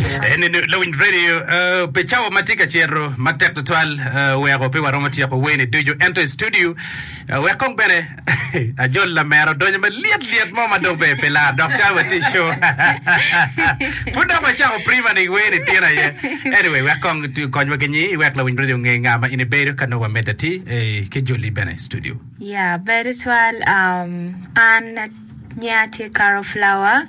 Eni lawiny radio pi cawa ma tye ka cito matek tutwal, weko pe waromo tyeko weni ducu, ento i studio wek kong bene ajol lamera odonyo malyet lyet mo ma dong pe pe lar dok cawa watye i show. Pud dok wacako prima ni weni tyen aye. Anyway, wek kong tu- konywa ki nyi wek lawiny radio onge nga ma in ibedo ka nongo wamedde ati eh, ki joli bene i studio. Ya, ber tutwal. Um, an nya tye Carol Flower.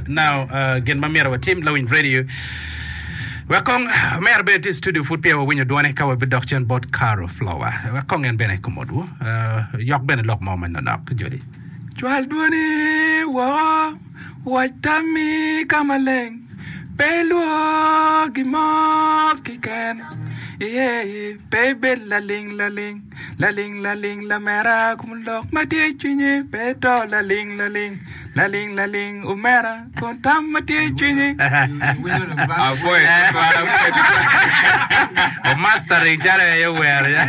Now, gin ma myero watim, lawiny radio wek kong omera bene tye i studio pud peya wawinyo dwone ka wabidok cen bot Caro Flower wek kong en bene kumotwu yok bene lok mo ma nonok Jodi. Cwal dwoni woko, wac tammi ka maleng, pe ilwor gin mo keken. Pe ibed laling laling, laling laling lamera kun lok ma tye i cwinyi pe ito laling laling, laling laling omera kun tam ma tye i cwinyi. Apwoyo tutwal apwoyo tutwal. O mastering calo en aye ower ya.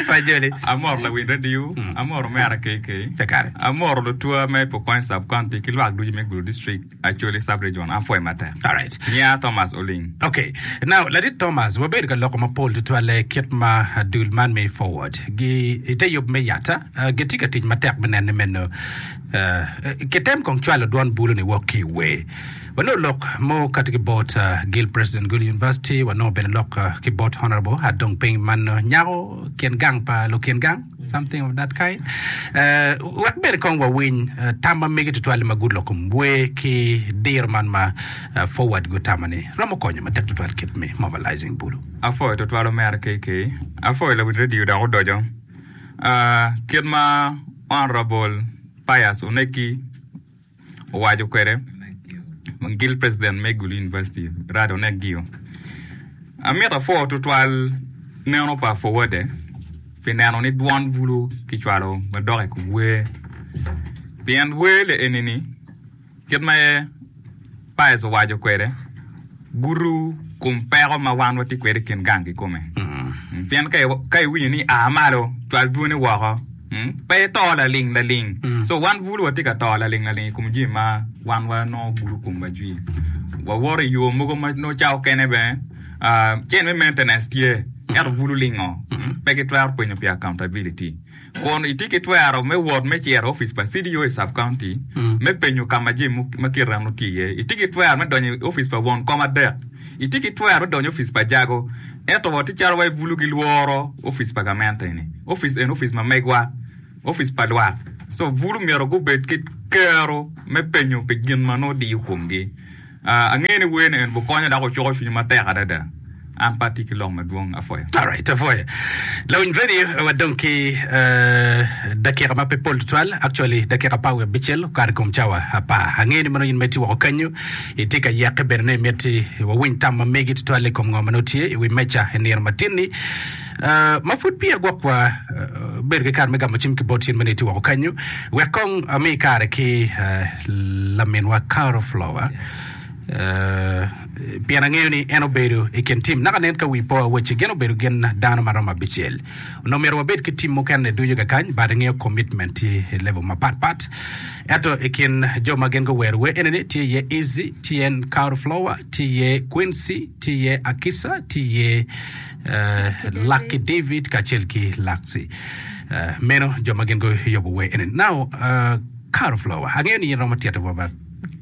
Pa Joli. Amoro lawil radio, amoro omera KK, Cakare. amoro lutwa me Pokot Sub County ki lwak ducu me Gulu District. Acholi Sub-Region, apwoye matek. Alright. Nya Thomas Oling. Okay. Now, Ladit Thomas, wabedo ka loko mapol tutwalle kit ma dul man me Forward gi i te yub me yata ah, gitye ka tic matek me nene meno. Ah, kitem kong cwalo dwon bulu-ni wok ki i wer. Wanongo lok mo kati ki bot ah, Gil President Gulu University, wanongo bene lok ah, ki bot Honourable Adong Ping man ah, nyako kin gang pa lukin gang. something of that kind. Uh, wek bene kong wawiny uh, tam ma mege tutwal ma gulo kom bwe ki diro man ma uh, forward gutamo ni romo konyo matek tutwal kit me mobilizing bulu. Afoyo tutwal omera KK. Afoyo lawin radio dok odojo. Uh, kit ma Honorable Pius oneki owaco kwede ma gil president me Gulu University Rado Negio, Amito apwo tutwal neno pa Fowode pi neno ni dwon bulu kicwalo madok i kom wer, pien wer leeni-ni kit ma aye Paez owaco kwede, gudo kom peko ma wan watye kwede i kin gang kikome. Pien ka iwinyo ni a malo, cwal dwoni woko, pe ito laling laling. So wan bulu watye ka to laling laling i kom jami ma wan wanongo gudo komwa jwi. Wawoto i yo mogo ma nongo cawa okene bene cen me maintenance tye, ento bulu lingo pe gitwero pwenyo pi accountability. Kun itye ki twero me wot me cito i opic pa CDO i Sub-County me penyo ka ma jami ma kit rano tye iye. Itye ki twero me donyo i opic pa won kom adek. Itye ki twero me donyo i opic pa jago. Ento wa tye calo wa i bulu gilworo opic pa gamente eni. Opic eni opic ma megwa, opic pa lwak. So bulu myero gubed ki kero me penyo pi gin ma nongo diyo komgi. Angeyo ni wer ni en obukonya dok ocuko cwinya matek adada. An pe atye ki lok madwong. Apwoyo. Alright, apwoyo. Lawiny Veni, wadong ki dakika ma pe pol tutwal, actually dakika apar wiye abicel okato i kom cawa apar. Angeyo ni mono in ma itye woko kenyu itye ka yeke bene ni imiti wawiny tam ma megi tutwal i kom ngo ma nongo tye i wi meja i nino matin-ni. ma pud peya gwokwa bedo ki kare me gamo cim ki bot cen ma nongo itye woko kanyu, wek kong ami kare ki laminwa Caro Flower, pien angeyo ni en obedo i kin tim. Naka nen ka wi po awaci gin obedo gin dano ma romo abicel. Onongo myero wabed ki tim mukene ducu kakany, but ingeyo commitment tye i level mapat pat. Ento i kin jo ma gin guwero wer eni ni tye iye Easy, tye iye Caro Flower, tye iye Quincy, tye iye Akisa, tye iye Lucky David kacel ki Lucky. Meno jo ma gin guyobo wer eni. Now, uh, Caro Flower, angeyo ni in romo tito wa ba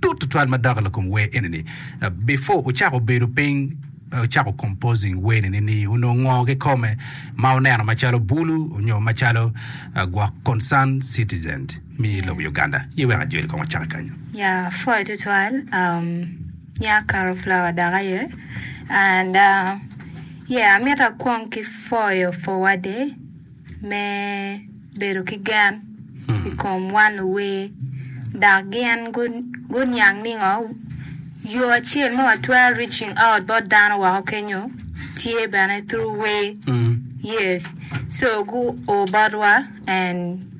tut tutwal madok i kom wer eni ni. Uh, before ucako bedo piny, uh, ucako composing wer eni ni onongo ngo kikome ma uneno macalo bulu onyo macalo uh, gwok concerned citizens mi lobo Uganda? Ye wek ajoli kong wacaki kanyo. Ya, pwoyo tutwal. Um, Nya karo flawa dok aye and uh, yeah amito akwong ki foyo fowa de me bedo ki gen i kom wan luwer dok gin guniang ningo yo acel ma watwero reaching out bot dano woko kenyo tye bene through wer yes so gu o botwa and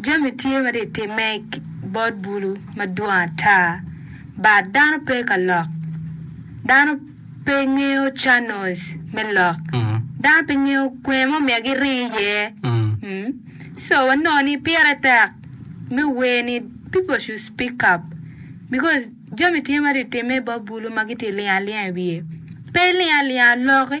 Jami tye ma ri timme i bot bulu madwong ata, but dano pe ka lok. Dano pe ngeyo channels me lok. Dano pe ngeyo kwene mo myero gi ri iye. So wa nongo ni pire tek me wer ni people should speak up because jami tye ma ri timme i bot bulu ma gi ti lingo alinga i wiye. Pe iling alinga loki.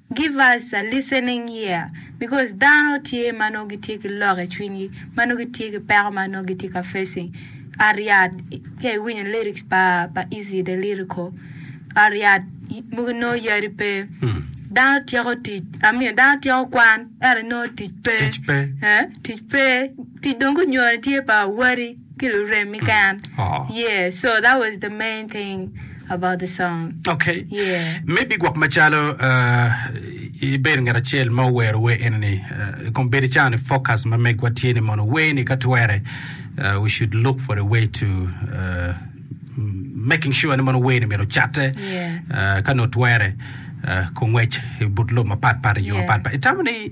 Give us a listening ear because dano tye ma nongo gitye ki lok i cwinygi ma nongo gitye ki peko ma nongo gitye ka facing ot yat ka iwinyo lyrics pa pa Eazy the lyrical ot yat mogo nongo yadi pe dano tyeko tic I mean dano tyeko kwan ento nongo tic pe Tic pe. eh, tic pe tic dong gunyone tye pa wadi. ki luremmi keken yeah so that was the main thing about the song okay yeah maybe gwok macalo uh, ibedo ngat acel ma owero wer enini uh, kong bedo caro ni focus ma megwa tye ni mono wer ni ka twere uh, we should look for a way to uh, making sure ni mono wer ni myero catte Yeah. uh, ka notwere uh, kongwec i but lobo mapatpat i yo Yeah. mapatpat itamo ni